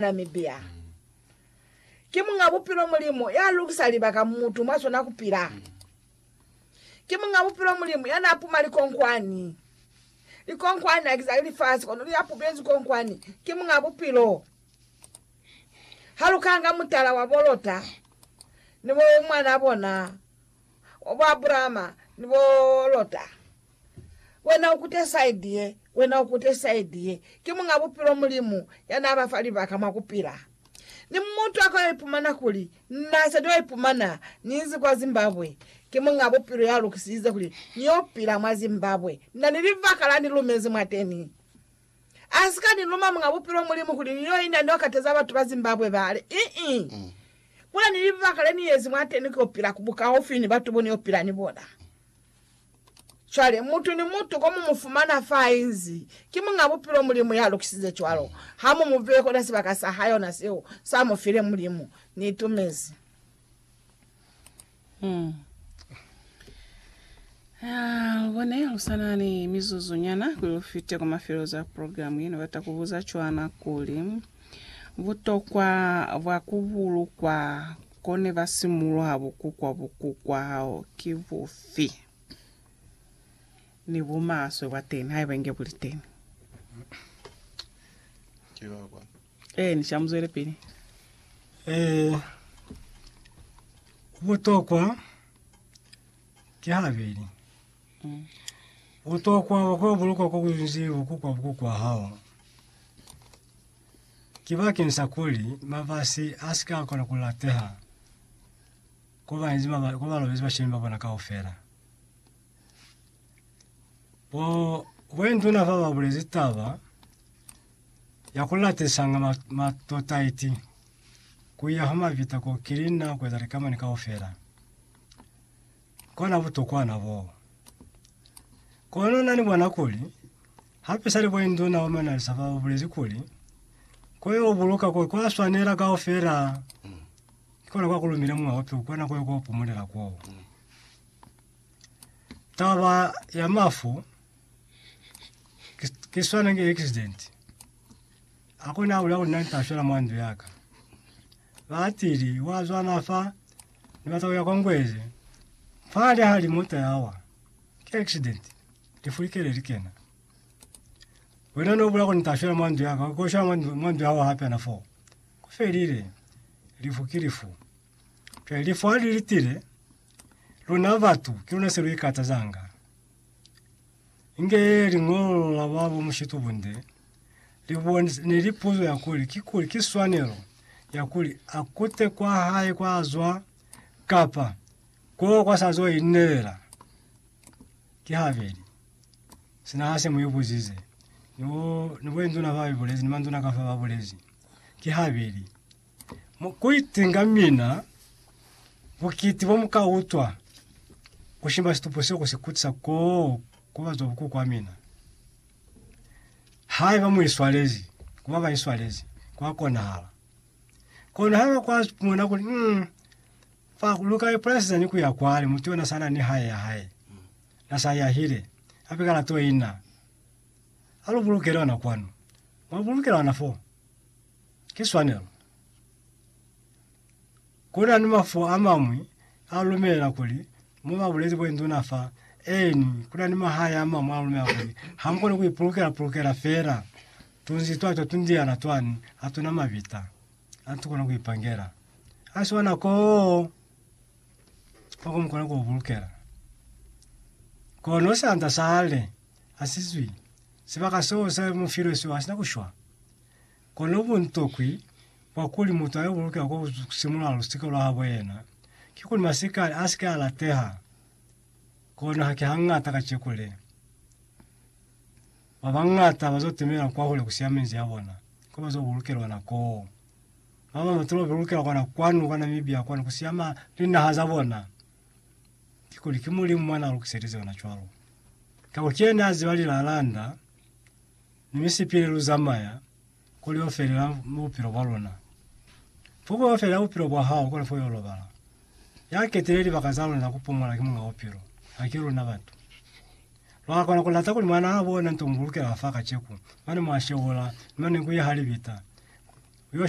Namibia ki Muñ'a Bupilo Mulimu ya lukisa libaka mutu mwa zona ku pila. Ki Muñ'a Bupilo Mulimu ya n'a puma likonkwani. Likonkwani haki za lifasi kono li apupezi konkwani. Ki Muñ'a Bupilo. Ha lu kanga mutala wa bo Lota ni bo mwan'a bona wa bo Abrahama ni bo Lota. Wena ukute side ye, wena ukute side ye. Ki Muñ'a Bupilo Mulimu ya n'a ba fa libaka mwa ku pila. Ni mutu a ka yo ipumana kuli, Na sa t'o ipumana ni inzi kwa Zimbabwe. Ki Muñ'a Bupilo ya lukisize kuli ni yo pila mwa Zimbabwe. Na ni libaka la ni lumezi mwateni. A si ka ni luma Muñ'a Bupilo Mulimu kuli ni yo ina ni yo kateza batu ba Zimbabwe bale. Ii. Kuli ni libaka le ni yezi mwateni ki yo pila ku bukaufi ni batu bo ni yo pila ni bona. Cwale, mutu ni mutu ko mu mu fumana fa inzi ki muñ'a bupilo, Mulimu ya lukisize cwalo, ha mu mu beye kona sibaka sa hae, ona seo sa mu file. Mulimu, Ni itumezi. Hmm. Ah, lubone, lu sa na ni mizuzu nyana kuli lu fite kwa mafelelezo a programu ye. Ni bata ku buza cwana kuli, butokwa bwa ku bulukwa Kone ba simuloha bukukwa bukukwa hao ki bufi? Ni bumaswe bwa teni haiba inge buli teni. Ki ba kwa. Eh, ni shamuzwele pili. Eh, butokwa ki habeli. Mm. Butokwa bwa kwa bulukwa kwa kunzi bukukwa bukukwa hao. ki bakeng sa kuli mafasi a si ka kona ku lateha ko ba inzi maba, ko ba lobezi bashemi ba bona kaufela. Bo wenduna fa ba bulezi taba ya ku latesanga ma- matotaiti ku ya ha mavita ko kili na ku eza likamani kaufela. Kona butokwana boo. Kono na ni bona kuli Hape seli kuli nduna wa manalisa fa ubulezi kuli, Ko yo buluka koi kwa swanela kaufela, ki kona kwa kulumile mwa ope ukona koi ko pumulela koo. Taba ya mafu ki swana ki accident. Akona ula kuli nani tashwela mwa ndu yaka. Ba atili wa zwana fa ni bata kuya kwa ngwezi, fa ali hali mota yawa. Ki accident. Lifu li kile li kena. Wena no bula kuni tashela mwandu yaka ko shela mwandu mwandu yawo hape ana fo. Ku felile. Lifu ki lifu. Ke lifu ha li litile luna batu ke luna se lu ikata zanga. Inge li ngolo la babo mushitu bunde. Li bone ne li puzo ya kuli ki kuli ki swanelo ya kuli a kute kwa hae kwa zwa kapa ko kwa sa zwa inelela. Ki habeli. Sina hase mu ibuzize. Ni, ni boinduna fa ibulezi, ni manduna ka fa ba bulezi. Ki habeli. Mu, ku itinga mina, bukiti bo mu ka utwa, ku shimba situpo seo ku si kutisa koo ku bazwa buku kwa mina. Haiba mu iswalezi, ku ba ba iswalezi, kwa konahala. Kono haiba kwa mona kuli, mm, Fa ku luka lipolasi zani ku ya kwale, mutu yona sa na ni hae ya hae, na sa yahile, a pika na toi na. A lu bulukele ona kwanu. Mwa bulukela ona fo. Ki swanelo. Ku na ni mafu a mañwi a lumelela kuli, mo ba bulezi bo induna fa, eeni, ku na ni mahae a mañwi a lumelela kuli, ha mu koni ku ipulukela-pulukela fela tunzi twa twa tundiana twani, ha tu na mabita. Ha ntu kona ku ipangela. Ha si wana ko kwa kumukona ku bulukela. Kono sanda sa hale hasizwi sibaka seo sa mu filwe seo hasina kushwa. Kono buntokwi bwa kuli mutu ayo bulukela kwa kusimula lusika lwa habo yena ki kuli masikali asike a lateha. Kono haki hangata kaceku le. Babañata bazo temela kwahule kusiya menzi yabona ko bazo bulukelwa na koo. Baba batolo bebulukela kwana kwanu kwa Namibia kwanu kusiya ma linaha zabona. Kikuli ki Mulimu mwana alukiselize ona cwalo. Kako kiyena aziba lilalanda ni misipili luzamaya Kuli yo felela bupilo bwa luna. Pupo yo felela bupilo bwa hao kuli fo yo lobala. Ya ketile libaka za luna ku pumola ki Muñ'a Bupilo, haki luna batu. Lwa kona ku lata kuli Mwanaa bona nto mu bulukela fa kaceku, mane mwa shewula, ni mane ku ya ha libita, ku yo shwela.